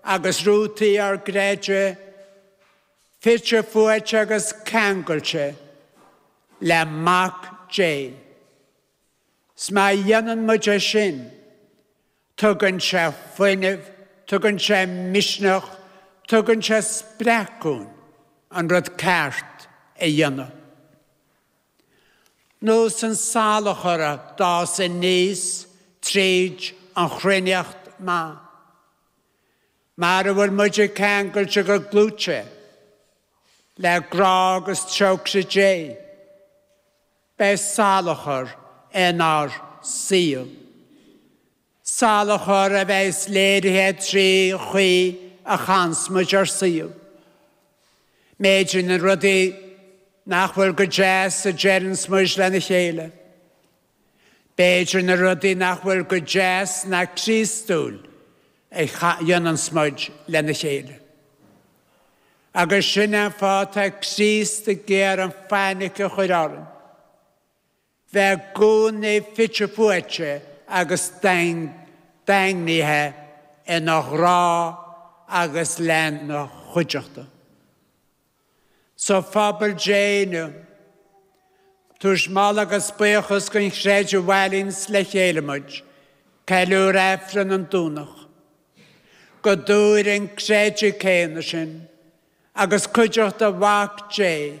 agus rútaí ár gcreidimh fite fuaite agus ceangailte le Mac Dé. 'S má dhéanann muid é sin, tugann sé fuinneamh, tugann sé misneach, tugann sé spreacadh an rud ceart a dhéanamh. nós an salachar a d'fhás aníos tríd an chruithneacht mhaith, mara bhfuil muid ceangailte go dlúth le grá agus trócaire Dé, beidh salachar inár saol. Salachar a bheas léirithe trí chaoi a chaitheanns muid ár saol. B'fhéidir na rudaí nach bhfuil go deas a deireanns muid lena chéile. B'fhéidir na rudaí nach bhfuil go deas ná Críostúil a dhéananns muid lena chéile. Agus sin an fáth atá Críost ag iarraidh an fainic a chur orainn. A bheith i gcónaí fite fuaite agus daingnithe ina ghrá agus lena chuideachta sa phobal Dé inniu, tugaimis moladh agus buíochas don Chroí a bhailíonns le chéile muid, ag ceiliúradh Aifreann an Domhnaigh, go dtabharfaidh an croí céanna sin agus cuideachta Mhac Dé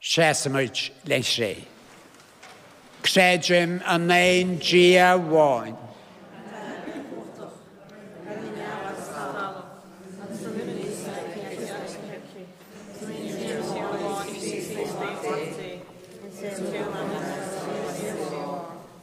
Seasaimid le haghaidh an Chré. Creidim in aon Dia amháin.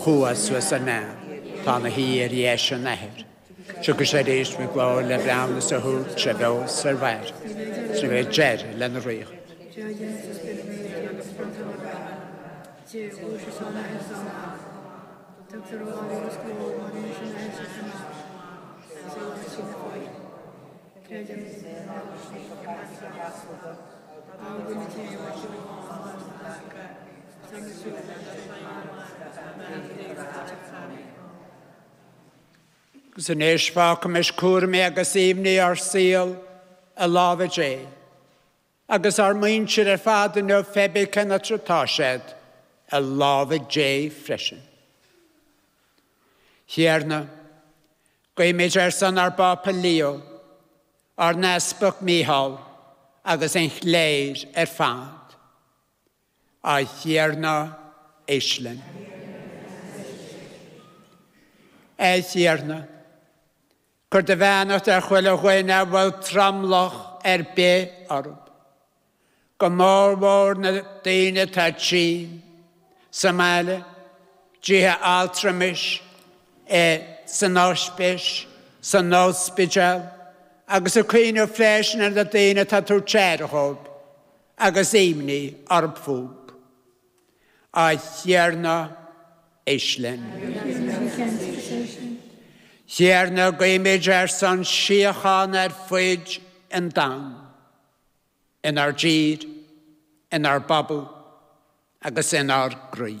Chuaigh suas ar neamh. Tá ina shuí ar dheis an Athar. Tiocfaidh sé aríst faoi ghlór le breithiúnas a thabhairt ar bheo is ar mhairbh. Is ní bheidh deireadh lena ríocht. Is anois fágaimis cúraimí agus imní ár saol i lámha Dé. Agus ár muintir ar fad inniu hébí cén áit atá siad i lámha Dé freisin. Thiarna, guímid ar son ár bPápa Leo, ár nEaspag Micheál agus an chléir ar fad. A Thiarna éist linn. A Thiarna, cuir do bheannacht ar chuile dhuine a bhfuil tromlach ar bith orthu, go mórmhór na daoine atá tinn, sa mbaile, dtithe altramais, i, san ospis, san ospidéal, agus ag cuimhneamh freisin ar na daoine atá ag tabhairt aire dhóibh. Agus imní orthu fúthu, a Thiarna, éist linn. Thiarna, guímid ar son síocháin ar fuid an domhain, inár dtír, inár bpobal agus inár gcroí.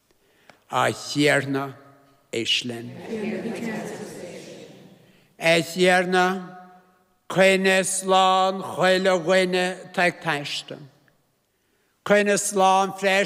A Thiarna, éist linn. A Thiarna, coinnigh slán chuile dhuine atá ag taisteal. Coinnigh slán freisin.